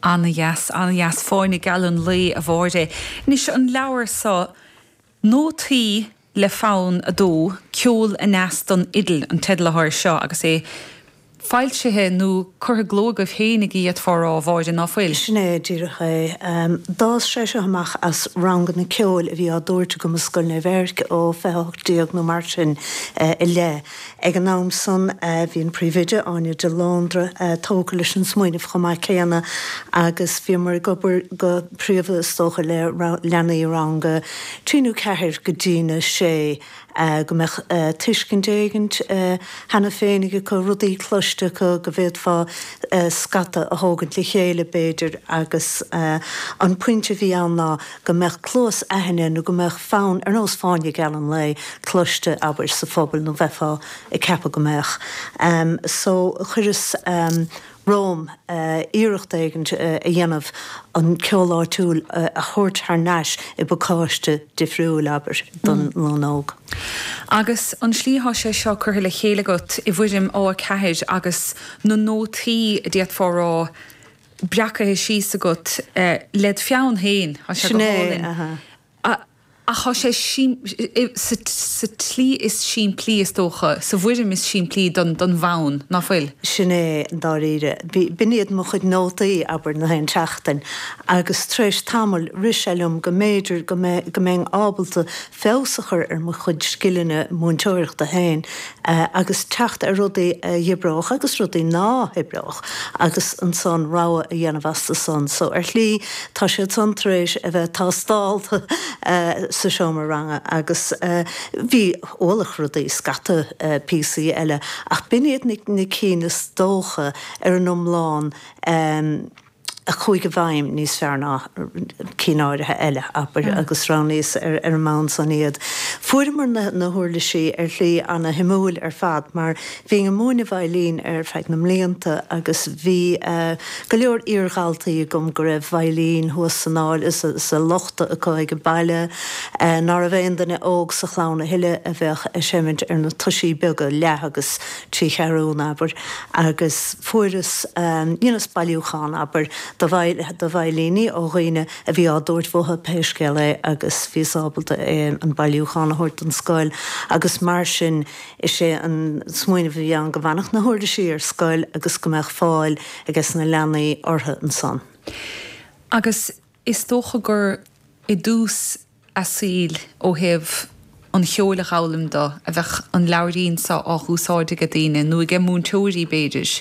Ana dheas, ana dheas. Fáinne geal an lae, a Mháire. Anois, an leabhar so, Nótaí le Fonn a Dó, Ceol Aneas don Fhidil, an teideal atá air seo agus é foilsithe nó curtha i gcló agaibh féin a déarfá a rá, a Mháire, ná fuil? Sin é díreach é. D'fhás sé seo amach as ranganna ceoil a bhí á dtabhairt agam i Scoil Naomh Eirc ó 2018 nó mar sin i leith. Ag an am san, bhí an Príomhoide, Áine de Lóndra, tógtha leis an smaoineamh chomh maith céanna agus bhíomar ag obair go príomha, is dócha, le leanaí i rang a trí nó ceathair go dtína sé go mbeadh tuiscint éigin cheana féin acu, rudaí cloiste acu go bhféadfá scata a thógaint le chéile, b'fhéidir, agus an pointe a bhí ann ná. go mbeadh cluas aithne nó go mbeadh fonn ar nós fáinne geal an lae cloiste abair sa phobal nó bheifeá ag ceapadh go mbeadh em so chuireas em romham eh iarracht éigin a dhéanamh an ceol áitiúil a thabhairt thar nais i bpacáiste difriúil abair don dream óg. Agus an tslí athá sé seo curtha le chéile agat i bhfoirm A4 agus na nótaí a déarfá a rá breacaithe síos agat led' pheann féin. Tá sé go hálainn. Sin é. Ach tá sé sa tslí is simplí, is dócha, sa bhfoirm is simplí den bhfonn, ná fuil? Sin é, dáiríre. B'in iad mo chuid nótaí, abair, nach aon tseachtain, agus tar éis tamaill rith sé liom go mb'fhéidir go mbeinn ábalta feabhas a chur ar mo chuid scileanna múinteoireachta féin agus teacht ar rudaí a dh'oibreodh agus rudaí ná hoibreodh agus ansan rogha a dhéanamh astu san. So ar shlí tá siad san tar éis a bheith tástáilte sa seomra ranga agus bhí ualach rudaí scata píosaí eile ach b'in iad na cinn is dócha ar an iomlán. a chuaigh i bhfeidhm níos fearr ná cinn áirithe eile, abair, agus roghnaíos ar an mbonn san iad. Fuaireamar na huirlisí ar shlí ana-shuimiúil ar fad mar bhínn ag múineadh veidhlín ar feadh na mblianta agus bhí go leor iar-dhaltaí agam go raibh veidhlín thuas san áiléar sa lochta acu age baile ná raibh aon duine óg sa chlann a thuilleadh a bheadh ag seimint ar na toisí beaga leath agus trí cheathrún, abair, agus fuaireas, you know, bailiúchán, abair, de veidhlíní ó dhaoine a bhí á dtabhairt uathu pé scéal é agus bhíos ábalta é, an bailiúchán, a thabhairt don scoil agus mar sin is é an smaoineamh a bhí ann go bhfanfadh na huirlisí ar scoil agus go mbeadh fáil ages na leanaí orthu ansan. Agus is dócha gur i dtús a saoil ó thaobh an cheoil a dh'fhoghlaim do, an mbeadh an leabhairín so á dh'úsáid age daoine, nó age múinteoirí, b'fhéidir.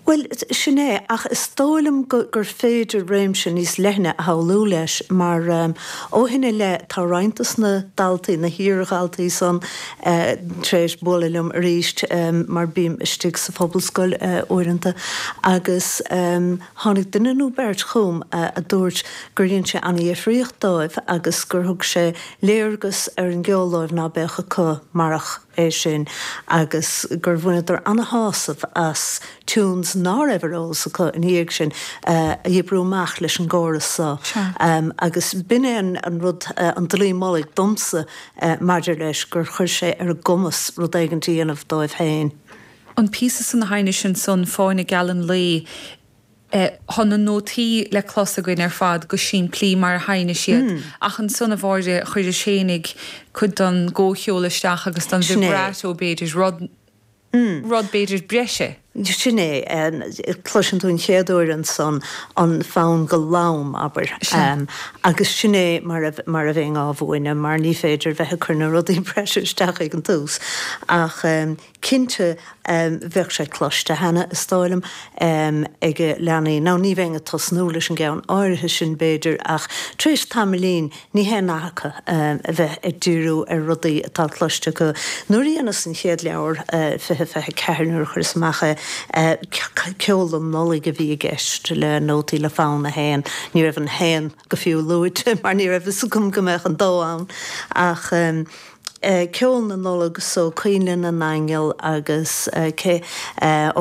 Bhuel, sin é, ach is dóigh liom gur féidir réimse níos leithne a shamhlú leis, mar ó shin i leith tá roinnt de na daltaí, na hiar-dhaltaí san, tar éis bualadh liom arís, mar bím istigh sa Phobalscoil uaireanta, agus. Tháinig duine nó beirt chugam a dúirt gur dhein sé ana-dhifríocht dóibh agus gur thug sé léargas ar an gceol dóibh ná beadh acu marach é sin agus gur bhaineadar ana-shásamh as tunes ná raibh ar eolas acu ina dhiaidh sin a oibriú amach leis an gcóras so agus b'in é an rud, an dlaoi mullaigh domsa maidir leis, gur chuir sé ar a gcumas rud éigint a dhéanamh dóibh féin. an píosa san a sheinnis ansan Fáinne Geal an Lae eh tá na nótaí le clos againn ar fad go simplí mar a sheinnis iad ach ansan a Mháire chuiris éinní cuid don gcomhcheol isteach agus don Sin é. vibrato b'fhéidir rud rud b'fhéidir breise. Sin é em cloiseann tú an chéad uair ansan an fonn go lom abair Sea. em agus sin é mar a mar a bheinn á mhúineadh mar ní féidir bheith ag cur na rudaí breise isteach ag an tús ach em Cinnte, bheadh sé cloiste cheana, is dóigh liom, ag leanaí, nó ní bheinn ag tosnú leis an gceann áirithe sin, b'fhéidir, ach tar éis tamaillín, ní haon nath acu a bheith ag díriú ar rudaí atá cloiste acu. Nuair a dheineas an chéad leabhar, fiche fiche ceathair, nuair a chuireas amach é, ceol don Nollaig a bhí i gceist, le nótaí le fonn a haon. Ní raibh an haon. go fiú luaite mar ní raibh fhios agam go mbeadh an dó ann ach ceol na Nollag so Coinnle na nAingeal agus cé.